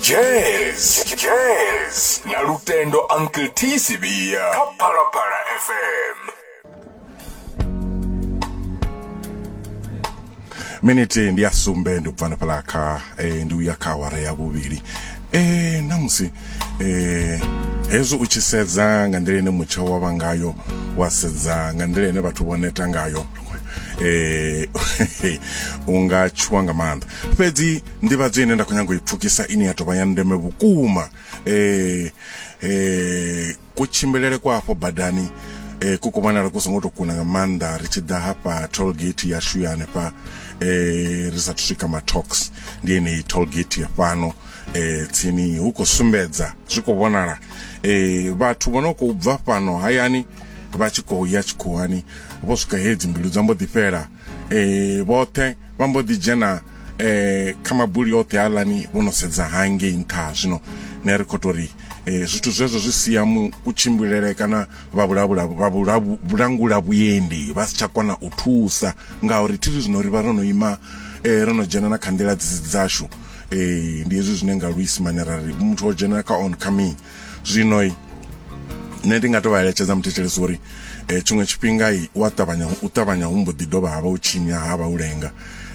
jazz jazz na lutendo uncle t sibia kha phalaphala fm miniti ndi ya sumbe ndi ubvana phala kha eh, ndi uya kha awara ya vhuvhili eh, namusi eh, hezwi u tshi sedza nga nḓila ine mutsho wa vha ngayo wa sedza nga nḓila ine vhathu vho neta ngayo eh unga tshuwa nga maanḓa fhedzi nḓivhadzo ine nda khou nyanga u i pfukisa ine ya tovha ya ndeme vhukuma eh eh kutshimbilele kwa afho badani eh ku kumanala ku songo to kuna nga maanḓa ri tshi ḓa hafha toll gate ya shuya hanefha eh ri sa swika matox ndi ene toll gate ya fhano eh tsini hu khou sumbedza zwi khou vhonala eh vhathu vho no khou bva fhano hayani vha tshi khou ya tshikhuwani vho swika he dzimbilu dza mbo ḓi fhela um vhoṱhe vha mbo ḓi dzhena um kha mabuli oṱhe aḽani vho no sedza hangei nṱha zwino ne ri khou tou ri um zwithu zwezwo zwi sia mu kutshimbilele kana vha vhulangula vhuendi vha si tsha kona u thusa ngauri thiri zwino ri vha ro no ima um ro no dzhena na kha nḓila dzashu um ndi hezwi zwine nga luisimane ra ri muthu o dzhena kha on coming zwino nṋe ndi nga to vha eletshedza muthetshelesi uri um tshiṅwe tshifhinga u a ṱavhanya u ṱavhanya hu mbo ḓi dovha ha vha u tshinya ha vha u lenga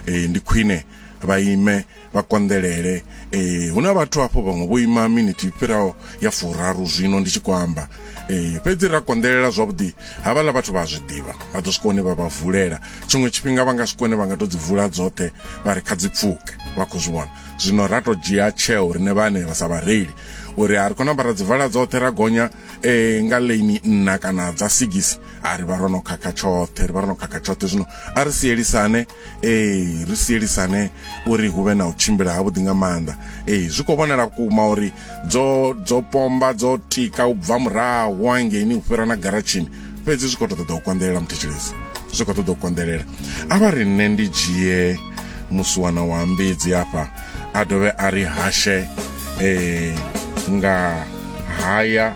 um ndi khwine vha ime vha konḓelele um hu na vhathu hafho vhaṅwe vho ima minithi fhiraho ya furaru zwino ndi tshi khou amba um fhedzi ra konḓelela zwavhuḓi havhaḽa vhathu vha a zwi ḓivha vha ḓo swika hune vha vha vulela tshiṅwe tshifhinga vha nga swika hune vha nga to dzi vula dzoṱhe vha ri kha dzi pfuke vha khou zwi vhona zwino ra to dzhia tsheo rine vhane ra sa vhareili uri a ri kona ambara dzivala dzoṱhe ra gonya e nga lane nna kana dza sigisi a ri vha ro no khakha tshoṱhe ri vha ro no khakha tshoṱhe zwino a ri sielisane e ri sielisane uri hu vhe na u tshimbila ha vhuḓi nga maanḓa e zwi kho vhonala kuma uri dzo dzo pomba dzo tika u bva murahu hangeini u fhira na garatshini fhedzi zwi khou to ṱoḓa u konḓelela muthetshelesi zwi khou ṱoḓa u konḓelela a vha ri nṋe ndi dzhie musiwana wa mbidzi afha a dovhe a ri hashe um nga haya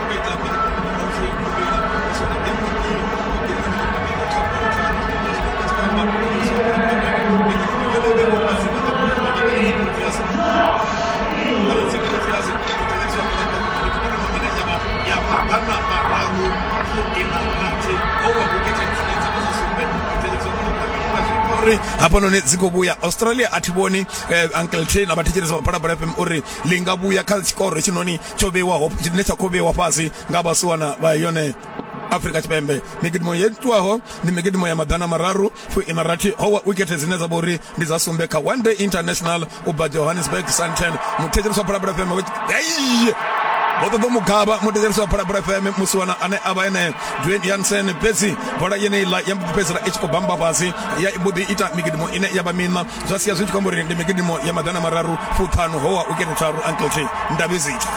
uri hafhanoni dzi khou vhuya australia a thi vhoni eh, uncle tena vha thetshelesa vhaphalaphala fm uri li nga vhuya kha tshikoro hetshinoni tsho vheiwaho tshine tsha khou vheiwa fhasi nga vhasiwana vha yone afrika tshipembe migidimo yo itwaho ndi migidimo ya maḓana mararu fuiṋa rathi howa wikete dzine dza vha uri ndi dza sumbe kha one day international u bva johannesburg santen muthetshelesi wa phalaphala fm ei vho ṱoḓa mugavha muthetshelesi wa phalaphala fm musiwana ane a vha ene dwayne yansen fhedzi bola yeneiḽa ya mbo ḓi fhedzisela i tshi khou bamba fhasi ya mbo ḓi ita migidimo ine ya vha miṋa zwa sia zwi tshi khou amba uri ndi migidimo ya maḓana mararu fuṱhanu howa u kene tharu uncle t ndavhizita